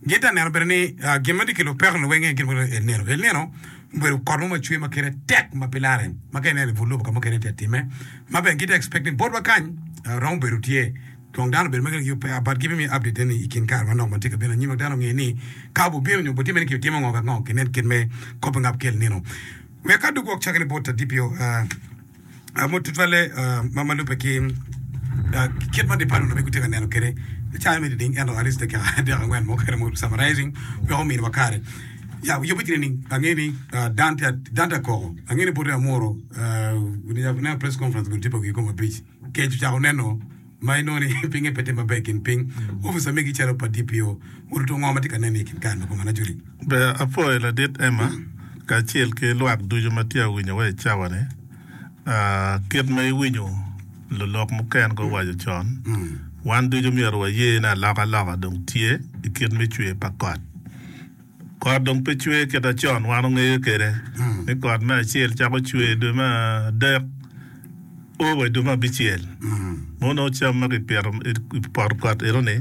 Gin tye ka neno bene ni gin ma tye ki lupekone weng aye gin ma El Nino. El Nino obedo kot mo ma cwer ma kite tek ma pe larre ma ka ineno i but lobo ka mukene tye ka timme, ma bene gitye ka expect ni botwa kany romo bedo tye. Dong dano obedo ma gin aye ope but giving me update eni i kin kare manok ma tye ka bino anyim wek dano onge ni ka bubino nyo butimme ni kibitimo ngo wek ngo kinen kit me kop ngap ki El Nino. Wek adog wok cake ni bot Adipio. Mo tutwalle ma lubbe ki kit ma dipalon aye gitye ka neno kwede i cawa me diding ento at least dakika adek angwen mo kene mogo summarizing wek ominiwa kare. Ya yubbe tye nining? Angeyo ni dan tye dan tye akoko. Angeyo ni boti Amuru ne press conference gudi tye pa wiki kong abic. Kec ocako neno. ma inongo ni pinge pe tye maber gin piny opica megi calo pa DPO oruto ngo matye ka nene i kin kare me komane ajoli. Ber apwoyo Ladit Emma kacel ki lwak ducu ma tye awinyo wa i cawa ni. Kit ma iwinyo lulok muken go waco con, wan ducu myero waye ni aloka loka dong tye i kit me cwer pa kot. Kot dong pe cwer kita con wan ongeyo kede ni kot me acel cako cwer dwe me adek o wa idwe me abicel mono nongo cam ma kipito ipoto kot enoni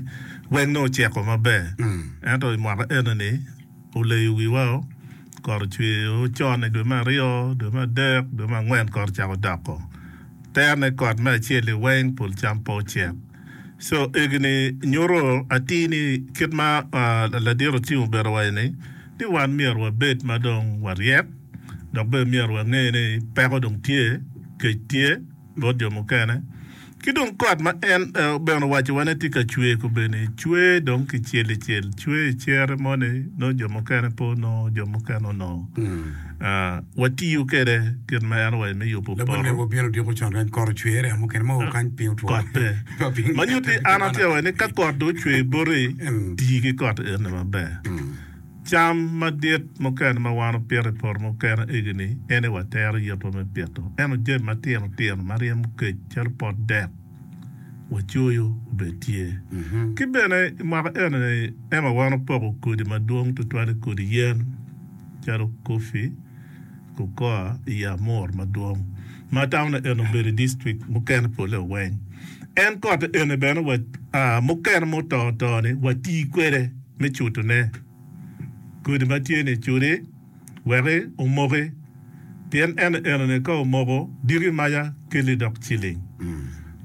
weng nongo oceko maber ento imwaka enoni oleyo wiwa o kot ocwer o con idwe me aryo dwe me adek dwe me angwen kot ocako doko tero ne kot me acel-li weng pol cam pe ocek. So egini nyuto atir ni kit ma ladit Otim obedo waco ni, ni wan myero wabed ma dong waryek dok bene myero wange ni peko dong tye, kec tye bot jo mukene. Ki dong kot ma en bene owaco wa ni tye ka cwer kobeni cwer dong ki cel icel, cwer icere moni nongo jo mukene pe onongo, jo mukene onongo. Watiyo kwede kit ma en owaco me yubo poto. Labonge wabino odyeko con rec kot ocwer yamo kene ma okany piny otwo. Kot pe. Ma nyuto ni an atye ka waco ni ka kot dong ocwer boti, ti ki kot eni maber. Cam madit mukene ma wan wupito i poto mukene egini ene watero yubbe me pito. Ento jami matino tino ma ryemo kec calo pot dek wacoyo obed tye. Ki bene i mwaka eni-ni ema wan wupoko kodi madwong tutwal i kodi yen. calo Kofi, Cocoa i Amor madwong, ma taunne eni obedo i distrik mukene polle oweng. En kote eni bene wa, aa, mukene ma oto oto-ni wati kwede me cutone kodi ma tye ni cudi weki omoki, pien en enoni ka omoko diki maca keli dok ciling.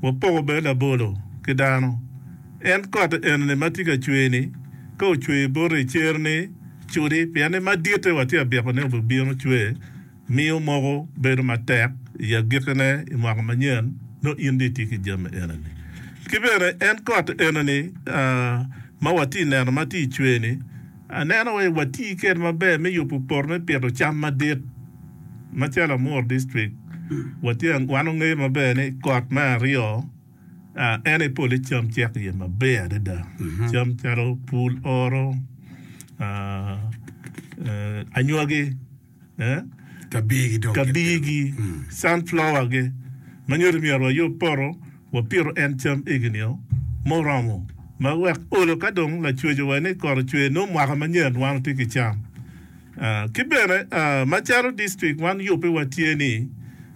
Wapoko bene labolo ki dano. En kot enini ma tye ka cwer-ni, ka ocwer boti i cer-ni, cudi, pien ni maditte watye ka byeko ni obibino cwer, miyo moko bedo matek i agikkine i mwaka manyen, nongo in dong itye ki jami enini. Ki bene, en kot enini ma watye ka neno ma tye ka cwer-ni, aneno wai wati kwede maber me yubo poto me pito cam madit, macalo Amuru District, watye, wan wangeyo maber ni kot me aryo, En aye pole cam cek iye maber adada, cam calo pul oro, anywagi, kabirgi, sunflower-gi ma nyuto ni myero wayub poto wapito en cam eginio muromo ma wek olo ka dong lacwecowa ni kot ocwer nongo mwaka manyen wan watye ki cam. Ki bene macalo dictrict wan yubbewa tye ni,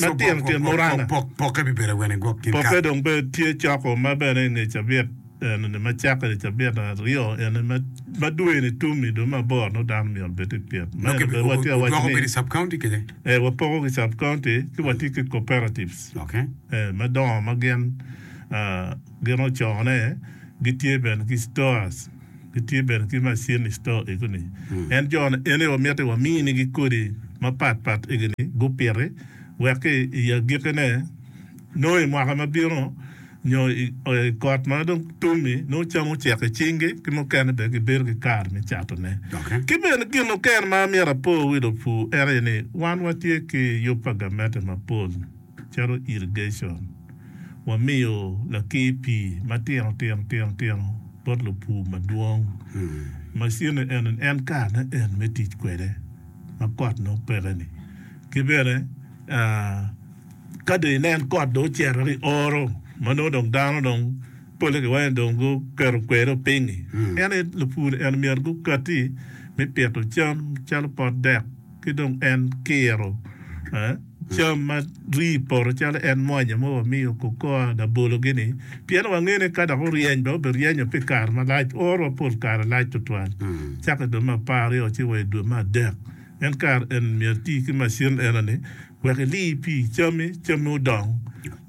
Latin tyen muranga. Pokke bibedo wene gwok gin kare? Pokke dong bed tye coko ma bene inge cabit eno-ni ma cakke ni cabit aryo eno-ni ma ma dwe-ni tum-mi dong me aboro nongo dano myero bed i pyet. Ma eno bene watye ka waco Wudwoko ni bedo i sub county kece? ee wapoko ki sub county ci watye ki cooperatives Ok. ee madongo ma gin aa gin ocone gitye bene ki stores. Gitye bene ki macin i cito egi ni. En jo ni eni wamiti wamini gi kodi ma pat pat egi ni gupiti wek ki i agiki ne nongo i mwaka ma bino nyo i kot ma dong tumi nongo cam ocek i cing gi ki mukene bene gi bedo ki kare me cato ne. Ki bene gin oken ma amyero apor wi lupur ene ni wan watye ki yub pa gamente mapol. calo irrigation, wamiyo lakir pii matino tino tino tino bot lupur madwong. Macine eno ni en karene en me tic kwede ma kot nongo peke-ni. Ki bene ka dong inen kot dong ocito ki i oro ma nongo dong dano dong polle ki wacci dong guketo kwedo piny-nyi, en aye lupur-ri eno myero gukatti me pito cam calo pot dek. ki dong en kiro cam ma rii i poto calo en mwanya ma wamiyo kokoa labolo-gi-ni, pien wangeyo ni ka dok oryeny bene obiryenyo pi kare malac, orwa pol kare lac tutwal, cako i dwe me apar aryo ci wa i dwe me adek. En kare eni myero eti ki macin eno-ni. wek ili pi cammi, cammi odong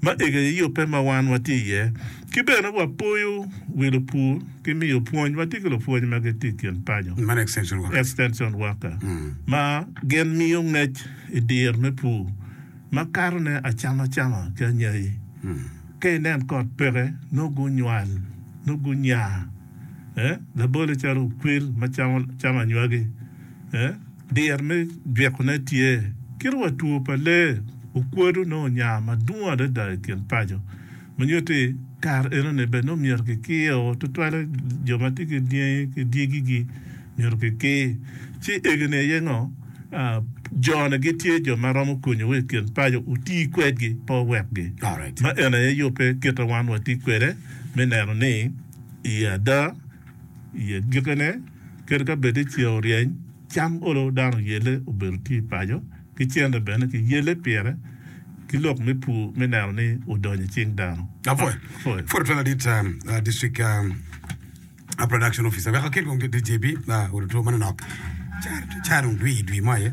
ma ega i yubbe ma wan watye iye. Ki bene wapoyo wi lupur ki miyo pwony, watye ki lupwony ma gitye i kin paco, extension worker, ma gin miyo ngec i dir me pur ma kato ne acama cama ki anyayi. Ka inen kot peke, nongo gunywal, nongo gunya, eh, labole calo okwil ma camo anywagi, eh. Dyere me jwikone tye kit wa two pa lee okwodo nongo onya madwong adada i kin paco ma nyuto ni kare enoni bene nongo myero kikio tutwalle jo ma tye ki dyangi ki dyegigi myero kikir ci egoni aye ngo jone gitye jo ma romo konyowa i kin paco wuti kwedgi pe wuwekgi ma eni aye yubbe kit ma wan watye kwede me neno ni i ada i gikene. Kadi ka bed ni ceng oryeny, cam olo dano yelle obedo tye i paco, ki cente bene ki yelle pire ki lok me pur me neno ni odonyo i cing dano. Apwoyo. Apwoyo. Pwod otwal adit um, uh, District um, uh, Production Officer. Wek akel kong ki dit JB, uh, oruto manonok. Car, car dong dwi, dwi mo aye.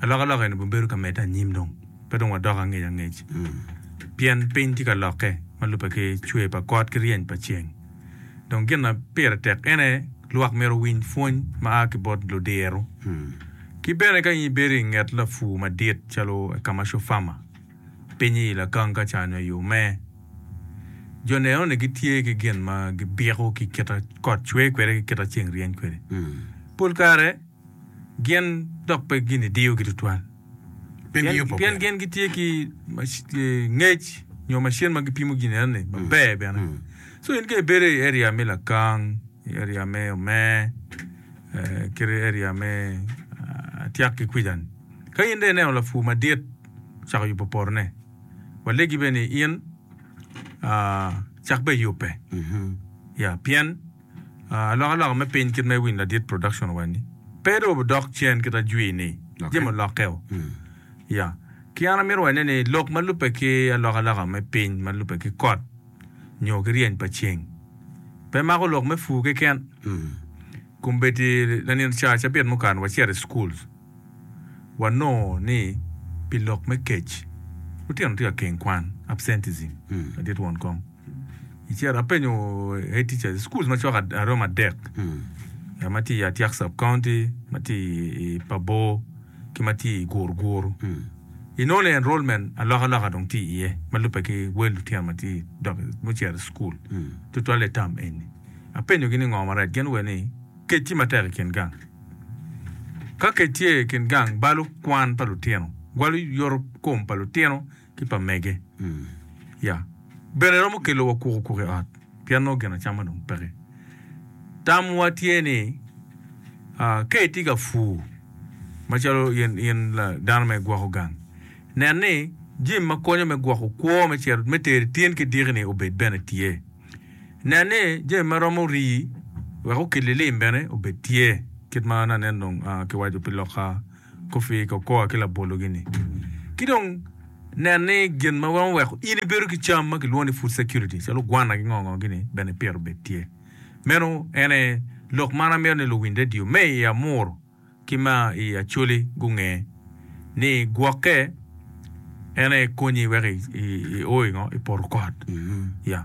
Alokaloka eni bibedo ka medde anyim dong, pe dong wadok angec angec. Pien piny tye ka lokke ma lubbe ki cwer pa got ki ryeny pa ceng. Dong gin ma pire tek en aye lwak myero owiny pwony ma a ki bot ludiro. Ki bene ka in ibedo i nget lapur madit calo a commercial farmer, pinye i Lagang ka ca nyo i Ome, jo neno ni gitye ki gin ma gibiko ki kit ma kot cwer kwede ki kit ma ceng ryeny kwede. Pol kare, gin dok pe ginidiyogi tutwal. Pi ngeyo pokere. Pien gin gitye ki ngec nyo macin ma gipimo gin enoni maber bene. So in ka ibedo i area me Lakang, i area me Omer, eh, kit i area me ah, Tiak ki kwica-ni, ka in dong ineno lapur madit ocako yubo potone, walegi bene ni in ah, cak bene yubbe. Ya, pien. Alokaloka me piny kit ma iwinyo ladit production owani pe dong odok cen kit ajwi ni jami olokke o ya ki an amito wacone ni lok ma lube ki alokaloka me piny ma lube ki kot nyo ki ryeny pa ceng pe mako lok me pur keken kombeddi lanin ca cabit mukane wacito i school wanongo ni pi lok me kec lutino tye ka keng kwan absenteism ladit won kom. Iciro apenyo head teacher i school macok aromo adek ngat ma tye i Atiak sub county, ma tye i Pabor ki ma tye i Guruguru. Inongo ni enrollment alokaloka dong tye iye ma lubbe ki wel lutino ma tye dok mucito i school tutwalle i tam eni. Apenyogi ni ngo marec gin lue ni kec tye matek i kin gang. Ka kec tye i kin gang balo kwan pa lutino, gwalo yoto kom pa lutino ki pa mege. Ya. Bene romo kelo wa kuku kuku i ot pien nongo gin acama dong peke. Tamwa tye ni aa, ka itye ka pur macalo in, in la dano ma igwoko gang, nen ni jami ma konyo me gwoko kwo me cero, me teri tin ki diki-ni obed bene tye. Nen ni jami ma romo rii wek okit lilim bene obed tye, kit ma nanen dong aa, kiwaco pi lok aa. Koffi i kokoa ki labolo-gini. Ki dong nen ni gin ma romo weko in ibedo ki cam ma kilwongo ni food security calo gwana ki ngo ngo gini bene ipito obed tye. Meno en aye lok man amito ni luwiny radio me i Amuru ki ma i Acholi gunge ni gwokke en aye konyi wek i o i ngo? I poto kot. Yeah.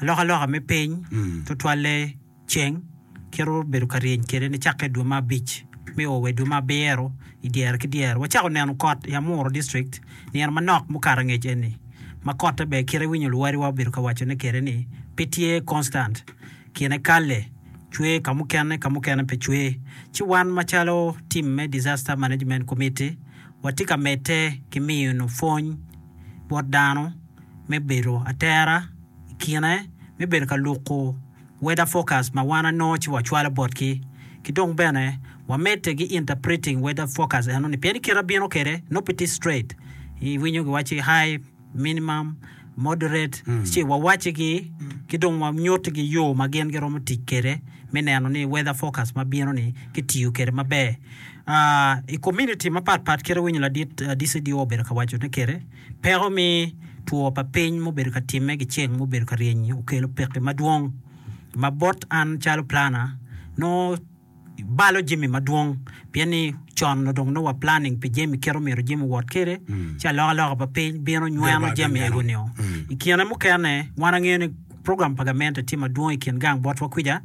Alokaloka me piny, tutwalle ceng, kite obedo ka ryeny kwede nicakke i dwe me abic me o wa i dwe me abiro i dyere ki dyere. Wacako neno kot i Amuru District nino manok mukato angec eni, ma kotte bene kite iwinyo luwadiwa obedo ka wacone kwede ni pe tye constant, kine kalle, cwer ka mukene ka mukene pe cwer. Ci wan macalo tim me Disaster Management Committee watye ka medde ki miyo nwu pwony. bot dano me bedo atera i kine me bedo ka luko weather forecast ma wan anongo ci wacwalo botgi, ki dong bene wamedde ki interpreting weather forecast eno ni pien ni kite abino kwede nongo pe tye straight, iwinyo giwaci high, minimum, moderate ci wawaccigi ki dong wanyutigi yo ma gin giromo tic kwede me neno ni weather forecast ma bino ni kitiyo kwede maber. I komuniti mapat pat kite winyo ladit DCDO obedo ka wacone kwede, peko me two pa piny ma obedo ka timme ki ceng ma obedo ka ryeny-nyi okelo pekki madwong ma bot an calo plana nongo balo jami madwong pien ni con nongo dong wa planning pi jami kit omyero jami owot kwede ci alokaloka pa piny bino nyweno jami ego nio. I kine mukene wan angeyo ni program pa gamente tye madwong i kin gang botwa kwica.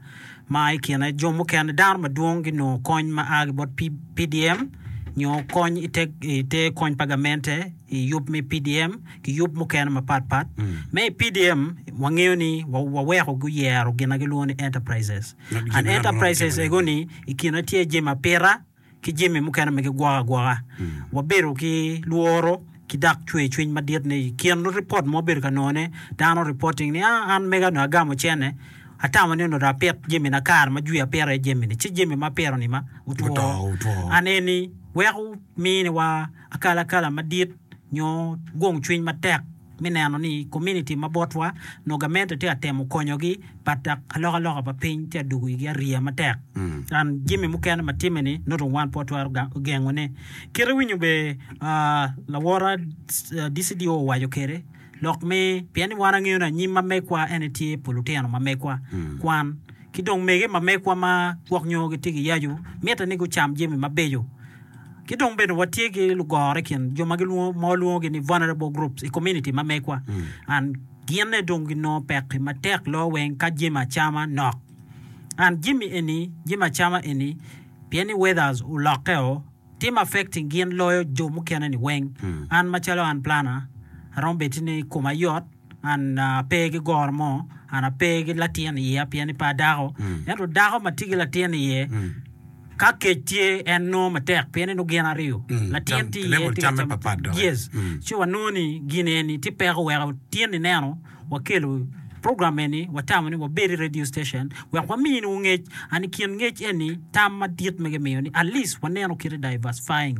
ma i kine jo mukene dano madwong ginongo kony ma a ki bot PDM nyo kony i te kony pa gamente i yub me PDM ki yub mukene mapat pat. Me i PDM wangeyo ni waweko guyero gin ma gilwongo ni enterprises. An enterprises ego ni i kine tye jemi apita, ki jami mukene ma gigwoko agwoka. Wabedo ki lworo ki dok cwercwiny madit ni i kin ripot ma wabedo ka nongone, dano reporting ni, Ah, an mega onongo agamo cene. Atamo ni onongo dong apit jamina kare ma jwi apito iye jamini, ci jami ma apito-ni ma otwo. Otwo, otwo. An eni weko miniwa akalakala madit nyo gungcwiny matek. me neno ni kominiti ma botwa nongo gamente tye ka temo konyogi pa dok alokaloka pa piny tye ka dwogo igi ariya matek. An jami mukene ma timme-ni nongo wan pe watwero gengone. Kit iwinyo be lawora DCDO owaco kwede lok me pien ni wan angeyo ni anyim ma megwa en aye tye pa lutino ma megwa kwan ki dong mege ma megwa ma gwok nyo gitye ki yacu mitte ni gucam jami mabeco. Ki dong bene watye ki lugoro i kin jo ma walwongogi ni vulnerable groups i komuniti ma megwa, and gine dong ginongo pekki matek loo weng ka jami acama nok. And jami eni, jami acama eni, pien ni weathers olokke-o, timo affecting gin loyo jo mukene-ni weng. And macalo an planner, aromo bedo ni koma yot. An ape ki goro mo, an ape ki latin i iya pien ni pe adako. Ento dako ma tye ki latin i iye, ka kec tye en nongo matek pien ni nongo gin aryo. Latin tye i iye tye ka cam. Yes. Ci wanongo ni gin eni tye peko weko tyen ineno wakelo program eni watamo ni wabed i radio station wek wamini wungec. And i kin ngec eni tam madit ma gimiyo ni at least waneno kite diversifying.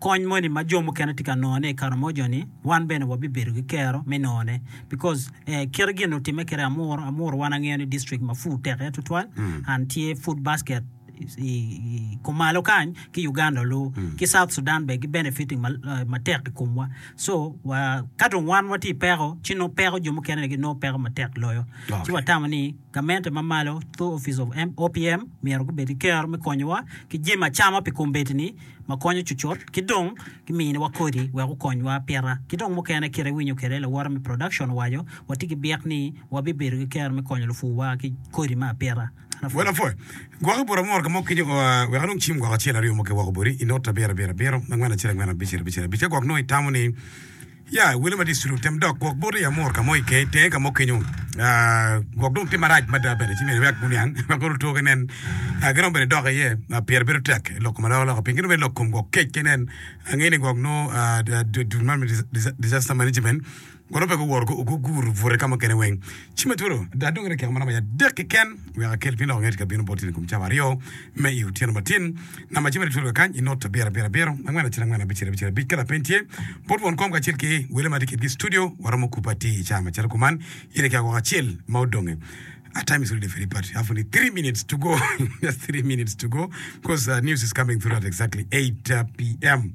Kony moni ma jo mukene tye ka nongone i Karamoja ni wan bene wabibedo ki kero me nongone because kit gin otime kede Amuru, Amuru wan angeyo ni district ma food tek iye tutwal and tye food basket i kumalo kany ki Uganda olu ki South Sudan bene gi benefiting matek i kumwa so wa ka dong wan watye i peko ci nongo peko jo mukene gi nongo peko matek loyo ci watamo ni gamente ma malo through office of OPM myero gubed ki kero me konyowa ki jemi acama pi kombeddi ni. ma konyo cucut ki dong giminiwa kodi wek okonywa pita ki dong mukene kit iwinyo kwede lawote me production owaco watye ki byek ni wabibedo ki kero me konyo lupur wa ki kodi me apita Well apwoyo gwok ibur amor kamo kenyo oo aa wek anong cim gwok acel aryo mo ki woko boti inota abiro abiro abiro angwen acel angwen abicel abicel abic ka gwok nongo itamo ni Ya, iwile ma district otem dok gwok boti i Amur ka mo i Kei, tenge ka mo kenyu. Gwok dong tye marac mada bene, ci myero iwek guniang ma kono two ginen. Giromo bene dok iye, pire bedo tek lok kom alokaloka piny. Ki dong bene lok kom gwok kec ginen, angeyo ni gwok nongo Department of Disaster Management gwok nongo pe guwoto guguro bute ka mukene weng. Ci me twolo ada dong dakika maromo iye adek keken wek akel piny loko ngeti ka bino boti ni kom cawa aryo me i otyeno matin. Namba ci mere twolo kakany i not abiro abiro abiro angwen acel angwen abicel abicel abic. Ka lapeny tye, bot won kom kacel ki wele ma tye kedgi i studio waromo kupe atir i cawa macalo kuman. In ikiya woko acel ma odonge. Our time is really very bad. Have only three minutes to go. Just three minutes to go because uh, news is coming through at exactly 8 uh, p.m.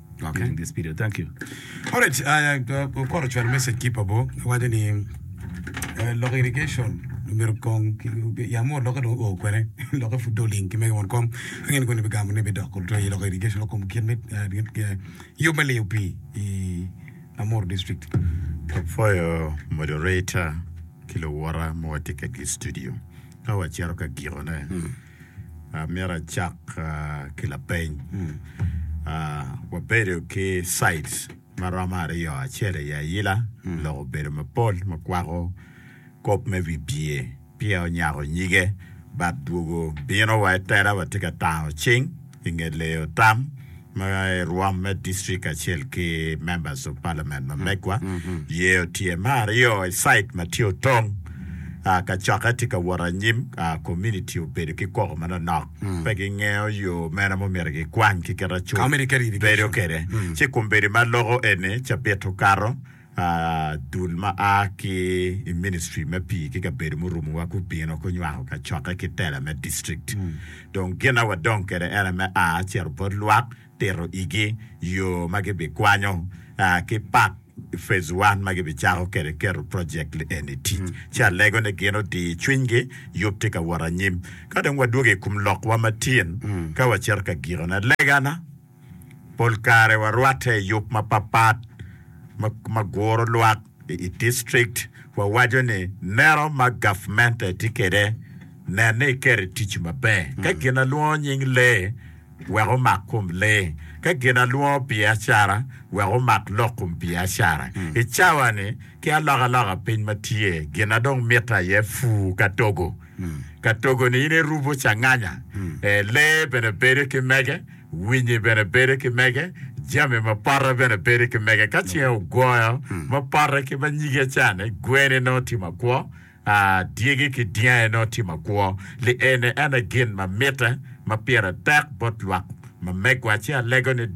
Okay. Using this video. Thank you. Alright, uh, okoro chwalo message ki pa bo. Wacho ni eh, lok irrigation obedo kong yamo loke dong o kwene loke fu doling ki mege won kom angin koni bigamo ne bidok to i lok irrigation lok kom kit me eh, gin- eh, yo me liyo pii i Amuru district. Apwoyo moderator ki luwora ma watye kegi i studio. Ka wacito ka gikone, Amyero acak ki lapeny. Wabedo ki sites ma romo aryo, acel aye ayila lok obedo mapol ma kwako kop me wibye, peya onyako nyige, bat dwogo bino wa itera watye ka tango cing. i nge leyo tam ma rwom me district kacel ki members of parliament ma megwa, yeyo tye me aryo i site ma tye otong. Ah, kacokke tye ka wot anyim, ah, community obedo ki koko manonok, pe gingeyo yo mene ma omyero gikwany ki kit acut bedo kede, ci kombeddi ma loko eni cabit okato. Dul ma a ki i Ministry me Pii ki Kabedo Murumowa gubino gunywako kacokke ki tela me distrikt. Dong gin ma wadong kwede en aye me a cito bot lwak, tito igi yo ma gibikwanyo ki pak Phase One ma gibicako kwede keto projekt lieni i tic. Ci alego ni gin odi cwinygi, yub tye ka wot anyim. Ka dong wadwogo i kom lokwa ma tin, ka wacito ka gikone, legana. Pol kare warwatte i yub mapatpat ma guro lwak i district. Wawaco ni nero ma gavmente tye kwede, nen ni iketo i tic maber. Ka gin ma lwongo nying lee, wek omak kom lee. Ka gin ma lwongo biacara, wek omak lok kom biacara. I cawa-ni, ki alokaloka piny ma tye, gin ma dong mitte aye pur ka togo. Ka togo-ni in irubo canganya, lee bene bedo ki mege. Winyi bene bedo ki mege, jami ma parre bene bedo ki mege. Ka cinge ogoyo ma parre ki ma nyige cane, gwene nongo tye makwo, aa, dyegi ki dyange nongo tye makwo. Li eni en aye gin ma mitte ma pire tek bot lwak ma megwa. Ci alego ni,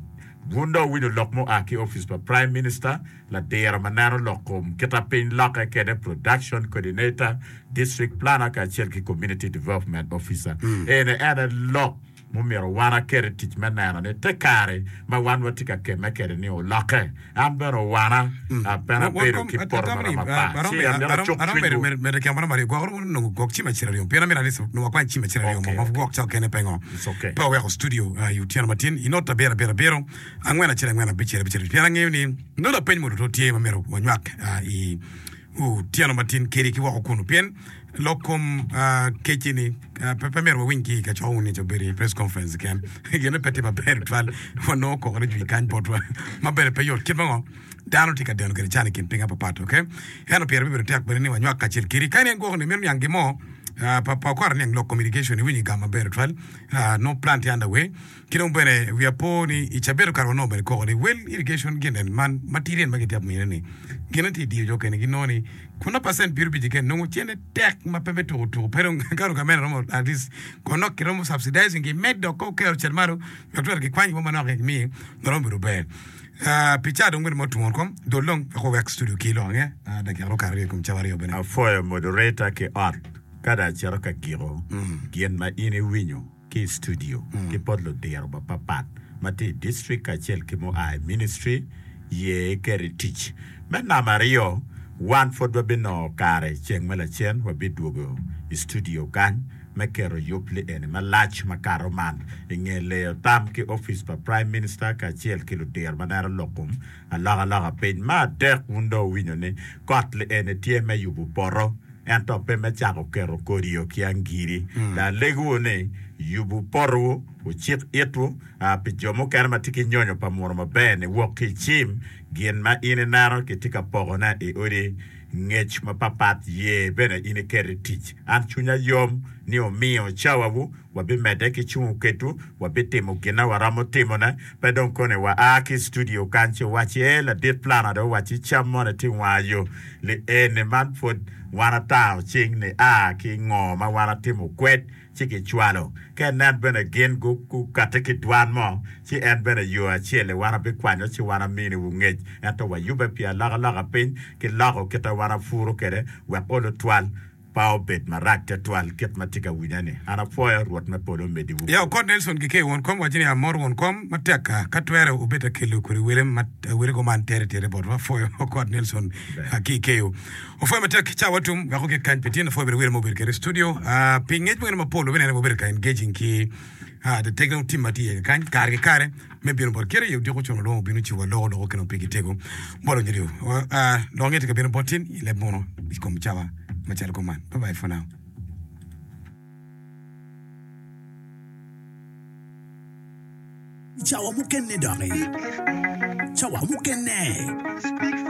Wun dong wuwinyo lok mua ki opic pa Prime Minister, ladiro ma neno lok kom kita piny lokke kede Production Coordinator, District Planner kacel ki Community Development Officer. Eni en aye lok. Omyero wan aket i tic me neno ni te kare ma wan watye ka kemme kwede-ni olokke. An bene owana, pien abedo ki poto mara mapat, ci amito acuk cwinywu. Otyeno matin kedi ki woko kunu pien lok kom kec eni pe myero wawiny ki i kacokwa wun nica obedo i press conference keken. Gine pe tye maber tutwal wanongo koko ni jwi kany botwa ma bene pe yot kit mango dano tye ka deno gire can i kin piny apapat ok eno pire bibedo tek bene ni wanywak kacel kedi kadi en gwoko ni mito niang gin mo pa okora niang lok kom irrigation iwinyo igamo maber tutwal no plant under way Ki dong bene wi apo ni i cabedo kare wanongo bene koko ni well irrigation gin en man matidi en ma gitye ka mine ni gin en tye diyo jo kene ginongo ni kun na percent piero bic keken nongo cene tek ma pe me tuku tuku pe dong ka gavment romo at least ko nok ki romo subsidizing ki med dok ko kero cel malo wek twero ki kwany wa manok ki mi ma romo bedo ber Ah, pi ca dong bene ma otungo kom dol dong wek owek studio ki lok ange Ah, dakika dong okato aryo i kom cawa aryo bene Apwoyo moderator ki ot ka dong acito ka giko gin ma in iwinyo. ki i studio ki bot ludiro mapapat ma tye i distrik kacel ki mua i ministri, ye iket i tic. Me namba aryo, wan pud wabinongo kare ceng me lacen wabidwogo i studio kany me keto yub lieni malac makato man i nge leyo tam ki opic pa Prime Minister kacel ki ludiro ma neno lok kom Alokaloka piny me adek wun dong wuwinyo ni kot li eni tye me yubu poto ento pe me cako keto kodie ki angiri. Dong alegiwu ni, yubu potowu, wucik itwu pi jo mukene ma tye ki nyonyo pa munu maber-ni wok ki i cim gin ma in ineno kitye ka pokone i odi. Ngec mapapat ye bene in iket i tic. An cwinya yom ni wumiyo cawawu, wabimedde ki cungo kedwu, wabitimo gin ma waromo timone. Pe dong koni wa a ki i studio kany ci wuwacci, Ee, Ladit Plana dong owacci cam moni tye wanga yo. Li eni man pwod wan ata ocing ni a ki ngo ma wan atimo kwed. ci gicwalo. Ka inen bene gin gukatti ki dwan mo, ci en bene yo acel-li wan abikwanyo ci wan aminiwu ngec, ento wayubbe pi alokaloka piny ki loko kite wan apuru kwede, wek olu twal pa obed marac twatwal kit ma tye ka winye-ni. An apwoyo Rwot me polo omediwu. Yawa okot Nelson gike i won kom, wacci ni, Amor won kom matekka, ka twere obed akello kodi wele ma awelego man tere tere botwa. Apwoyo okot Nelson ki i keyo. Opwoyo matek ki cawa tum wek ogik kany pi tyen lapwoyo bene wire ma obedo kede i studio pi ngec mukene mapol wek binene ma obedo ka engaging ki the technical team ma tye iye kany kare ki kare me bino bot kite i odiko ocun olwongo obino ocibo aloko loko kinongo pigi tego bot onyo lyo lok nge tye ka bino bot tin i leb muno i kom cawa macalo kong man bye bye for now.